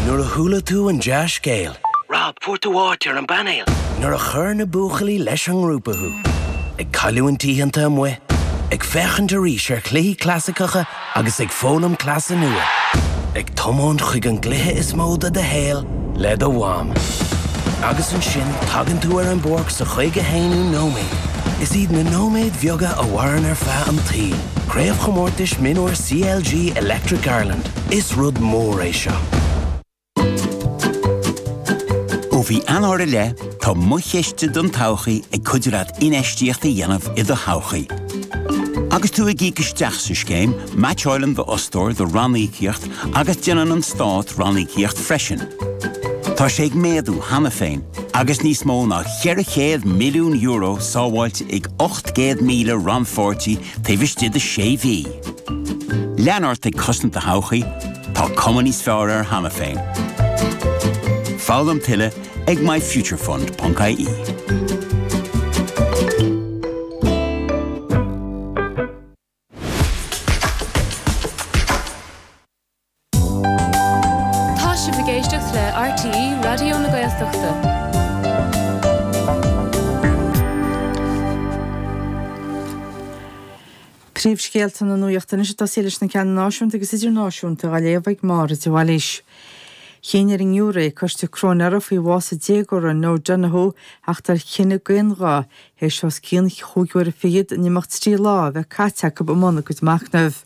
Nuair a chuala tú an dea-scéal. Rob, fuair tú áit ar an bpainéal! Nuair a chuir na buachaillí leis an ngrúpa thú. Ag cailliúint oícheanta amuigh. Ag féachaint arís ar chluichí clasaiceacha agus ag foghlaim cleasa nua. Ag tiomáint chuig an gcluiche is mó de do shaol le do mham. Agus ansin tagann tú ar an bpáirc sa chaoga haonú nóiméad. Is iad na nóiméid bheaga a mhaireann ar feadh an tsaoil. Craobhchomórtais Mionúir CLG Electric Ireland, Is rud mór é seo. Ó mhí Eanáir i leith, tá Mo Chiste don Todhchaí ag cuidiú leat infheistíocht a dhéanamh i do thodhchaí. Agus tú ag íoc isteach sa scéim, meaitseáileann d'fhostóir do ranníocaíocht agus déanann an Stát ranníocaíocht freisin. Tá sé ag méadú cheana féin, agus níos mó ná €400 milliún sábháilte ag Céad míle rannpháirtí taobh istigh de sé mhí? Lean ort ag cosaint do thodhchaí, tá cuma níos fearr air cheana féin. Foghlaim tuilleadh ag myfuturefund.ie. Tá sibh ag éisteacht le RTÉ Raidió na Gaeltachta. Príomhscéalta na Nuachta anois ag tosaí leis na ceanna náisiúnta agus idirnáisiúnta á léamh ag Máire de Bhailís. Chinn ar an ngiúiré coiste cróinéara faoi bhás an déagóra Noah Donohoe a theacht ar chinneadh d'aon ghuth Théis os cionn chúig uaire fichead in imeacht trí lá a bheith caite acu i mbun a gcuid machnaimh.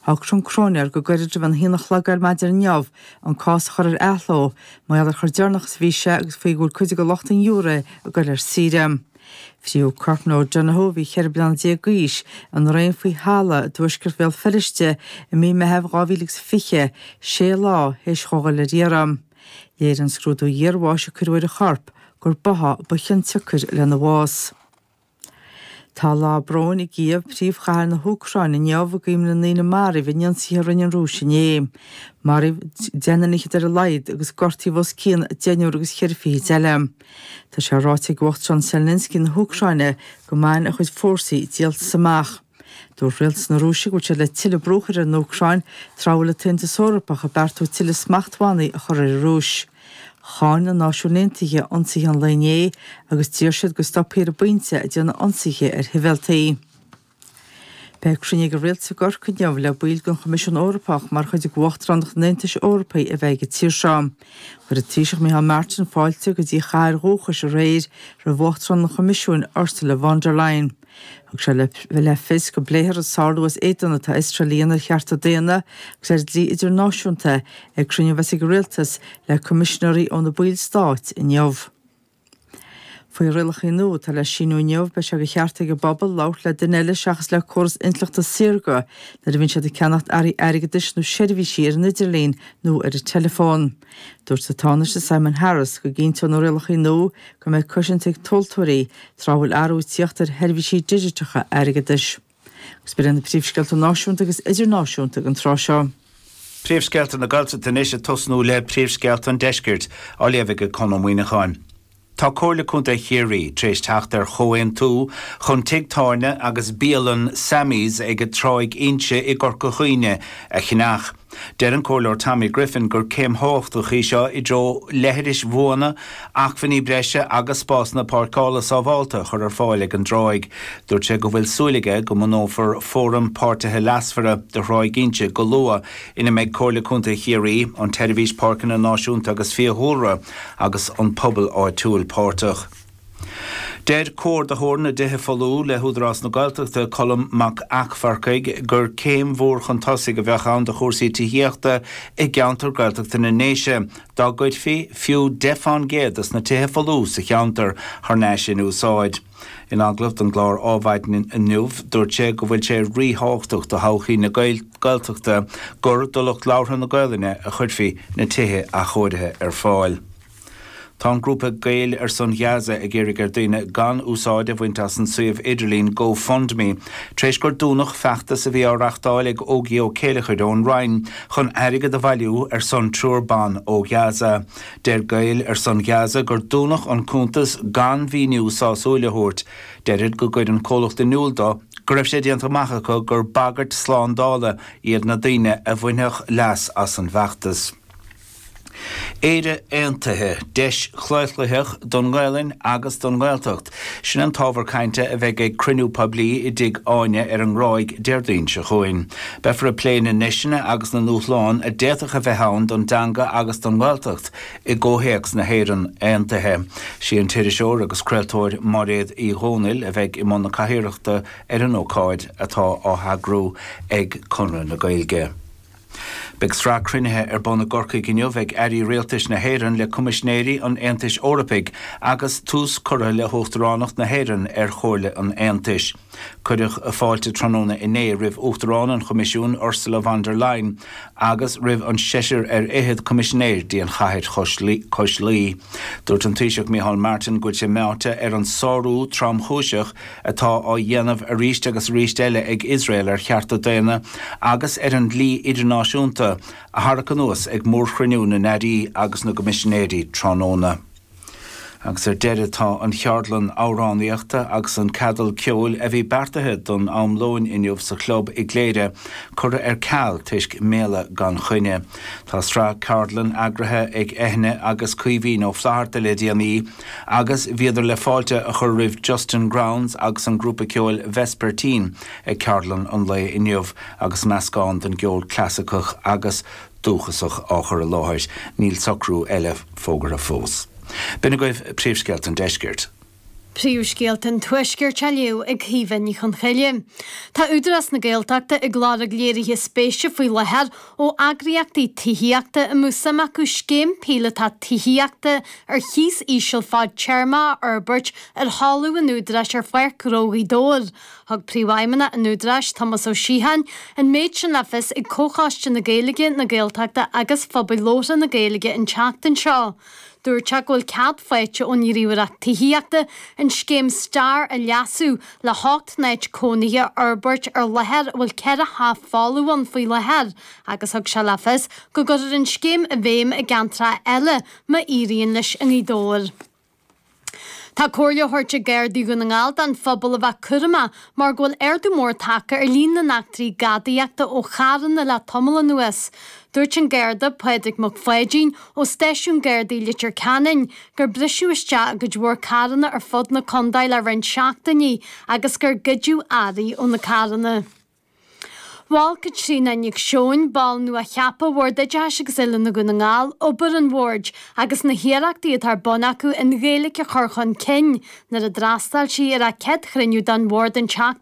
Shocraigh an cróinéir go gairid roimh an haon a chlog ar maidin inniu an cás a chur ar athló, mar gheall ar chomh deireanach is a bhí sé agus faoi go bhfuil cuid de lucht an ghiúré ag goil ar saoire. Frítheadh corp Noah Donohoe, a bhí ceithre bliana déag d'aois, i ndraein faoi thalamh i dtuaisceart Bhéal Feirste i mí Meithimh 2020, sé lá théis dhó ghoil ar iarraidh. Léirigh an scrúdú iarbháis a cuireadh ar a chorp gur báthadh ba chiontsiocair lena bhás. Tá lá bróin i gCíév, príomhchathair na hÚcráine, inniu i gcuimhne na ndaoine a maraíodh in ionsaithe a rinne an Rúis inné. Maraíodh deichniúr fhichead ar a laghad, agus gortaíodh os cionn deichniúr agus cheithre fichid eile. Tá sé ráite ag Uachtarán Zelensky na hÚcráine go mbainfidh a chuid fórsaí díoltas amach. Dúirt Rialtas na Rúise go bhfuil siad le tuilleadh brú a chur ar an Úcráin tráth a bhfuil an tAontas Eorpach ag beartú tuilleadh smachtbhannaí a chur ar an Rúis. Cháin na Náisiúin Aontaithe ionsaithe an lae inné agus d'iarr siad go stopfaí ar an bpointe ag déanamh ionsaithe ar shibhialtaigh. Beidh cruinniú ag an rialtas i gCorcaigh inniu le baill den Choimisiún Eorpach mar chuid d'Uachtaránacht an Aontais Eorpaigh a bheith ag an tír seo. Chuir an Taoiseach Micheál Martin fáilte go dtí a chathair dhúchais aréir roimh Uachtarán an Choimisiúin, Ursula von der Leyen. Thug sé le fios go bpléifear an sárú as éadan atá Iosrael a dhéanamh ar chearta daonna agus ar dhlí idirnáisiúnta ag cruinniú a bheas ag an Rialtas le coimisinéirí ó na ballstáit inniu. Faoi rialacha nua atá le síniú inniu, beidh sé de cheart ag an bpobal labhairt le duine eile seachas le córas intleachta saorga nuair a bhíonn siad ag ceannacht earraí airgeadais nó seirbhísí ar an idirlíon nó ar an teileafón. Dúirt an Tánaiste Simon Harris go gcinnteodh na rialacha nua go mbeadh cosaint ag tomhaltóirí tráth a bhfuil athrú ag teacht ar sheirbhísí digiteacha airgeadais. Agus b'in iad na príomhscéalta náisiúnta agus idirnáisiúnta ag an tráth seo. Príomhscéalta na Gaeltachta anois ag tosnú le príomhscéalta an deiscirt, á léamh ag Conn Ó Muíneacháin. Tá Comhairle Contae Chiarraí tar éis teacht ar chomhaontú chun tigh tábhairne agus bialann Sammy's ag Tráigh Inse i gCorca Dhuibhne a cheannach. Deir an Comhairleoir Tommy Griffin gur céim thábhachtach í seo i dtreo leithris bhuana, acmhainní breise agus spásanna páirceála sábhálta a chur ar fáil ag an dtráigh. Dúirt sé go bhfuil súil aige go mbunófar Fóram Páirtithe Leasmhara do Thráigh Inse go luath ina mbeidh Comhairle Contae Chiarraí, an tSeirbhís Páirceanna Náisiúnta agus Fiadhúlra, agus an pobal áitiúil páirteach. Deir Comhordaitheoir na dTithe Folmha le hÚdarás na Gaeltachta, Colm Mac Eachmharcaigh, gur céim mhór chun tosaigh a bheadh ann do chúrsaí tithíochta i gceantar Gaeltachta na nDéise dá gcuirfí fiú 10 fán gcéad dos na tithe folmha sa cheantar thar n-ais in úsáid. In agallamh don gclár Adhmhaidin inniu, dúirt sé go bhfuil sé ríthábhachtach do thodhchaí na Gaeltachta gur do lucht labhartha na Gaolainne a chuirfí na tithe athchóirithe ar fáil. Tá an grúpa Gaeil ar son Ghaza ag iarraidh ar daoine gan úsáid a bhaint as an suíomh idirlín Go Fund Me tar éis gur dúnadh feachtas a bhí á reachtáil ag Ógie Ó Céilleachair ón Rinn chun airgead a bhailiú ar son triúr ban ó Ghaza. Deir Gaeil ar son Ghaza gur dúnadh an cuntas gan mhíniú sásúil a thabhairt. Deirid gur chuir an comhlacht in iúl dó go raibh sé déanta amach acu gur bagairt slándála iad na daoine a bhainfeadh leas as an bhfeachtas. Éire Aontaithe, Deis chlaochlaitheach don nGaelainn agus don nGaeltacht. Sin an t-ábhar cainte a bheidh ag cruinniú poiblí i dTigh Áine ar an nGráig Déardaoin seo chugainn. Beifear ag plé na ndeiseanna agus na ndúshlán a d'fhéadfadh a bheith ann don dteanga agus don nGaeltacht i gcomhthéacs na hÉireann Aontaithe. Sí an t-iriseoir agus craoltóir Mairéad Uí Dhomhnaill a bheidh i mbun na cathaoireachta ar an ócáid atá á heagrú ag Conradh na Gaeilge. Beidh sraith cruinnithe ar bun i gCorcaigh inniu ag Airí Rialtais na hÉireann le Coimisinéirí an Aontais Eorpaigh agus tús curtha le hUachtaránacht na hÉireann ar Chomhairle an Aontais. Cuireadh fáilte tráthnóna inné roimh Uachtarán an Choimisiúin Ursula von der Leyen agus roimh an seisear ar fhichead Coimisinéir dtí an chathair cois Laoi. Dúirt an Taoiseach Micheál Martin go bhfuil sé meáite ar an sárú tromchúiseach a atá á dhéanamh arís agus arís eile ag Iosrael ar chearta daonna agus ar an dlí idirnáisiúnta a tharrac anuas ag mórchruinniú na nAirí agus na gCoimisinéirí tráthnóna. Agus ar deireadh tá an cheardlann amhránaíochta agus an ceadal ceoil a bhí beartaithe don am lóin inniu sa Chlub i gCléire curtha ar ceal toisc méala gan choinne. Tá sraith ceardlann eagraithe ag Eithne agus Caoimhín Ó Flatharta le déanaí, Agus bhíodar le fáilte a chur roimh Justin Grounds agus an grúpa ceoil Vespertine ag ceardlann an lae inniu agus meascán den gceol clasaiceach agus dúchasach á chur i láthair. Níl socrú eile fógartha fós. B'in agaibh príomhscéalta an deiscirt. Príomhscéalta an tuaiscirt á léamh ag Caoimhe Ní Choncheille. Tá Údarás na Gaeltachta ag lorg léirithe spéise faoi láthair ó eagraíochtaí tithíochta a mbeadh suim acu scéim píolotach tithíochta ar chíos íseal fad téarma a fhorbairt ar thalamh an Údaráis ar Pháirc Ghnó Ghaoth Dobhair. Thug Príomhfheidhmeannach an Údaráis, Tomás Ó Siocháin, an méid sin le fios ag Comhchoiste na Gaeilge, na Gaeltachta agus Phobail Labhartha na Gaeilge an tseachtain seo. Dúirt sé go bhfuil cead faighte ón nGníomhaireacht Tithíochta an scéim STAR a leasú le hocht n-áit cónaithe a fhorbairt ar láthair a bhfuil ceithre theach folamh ann faoi láthair agus thug sé le fios go gcuirfear an scéim i bhfeidhm i gceantracha eile má éiríonn leis i nGaoth Dobhair. Tá comhairle á thabhairt ag Gardaí Dhún na nGall don phobal a bheith cúramach mar go bhfuil ardú mór tagtha ar líon na n-eachtraí gadaíochta ó charranna le tamall anuas. Dúirt an Garda Pádraig Mac Pháidín ó Stáisiún Gardaí Leitir Ceanainn gur briseadh isteach i gcuid mhór carranna ar fud na contae le roinnt seachtainí agus gur goideadh earraí ó na carranna. Mhol Caitríona Nic Seoin, ball nua-cheaptha Bhord Oideachais agus Oiliúna Dhún na nGall, obair an bhoird agus na hiarrachtaí atá ar bun acu an Ghaeilge a chur chun cinn nuair a d'fhreastail sí ar a céad chruinniú den bhord an tseachtain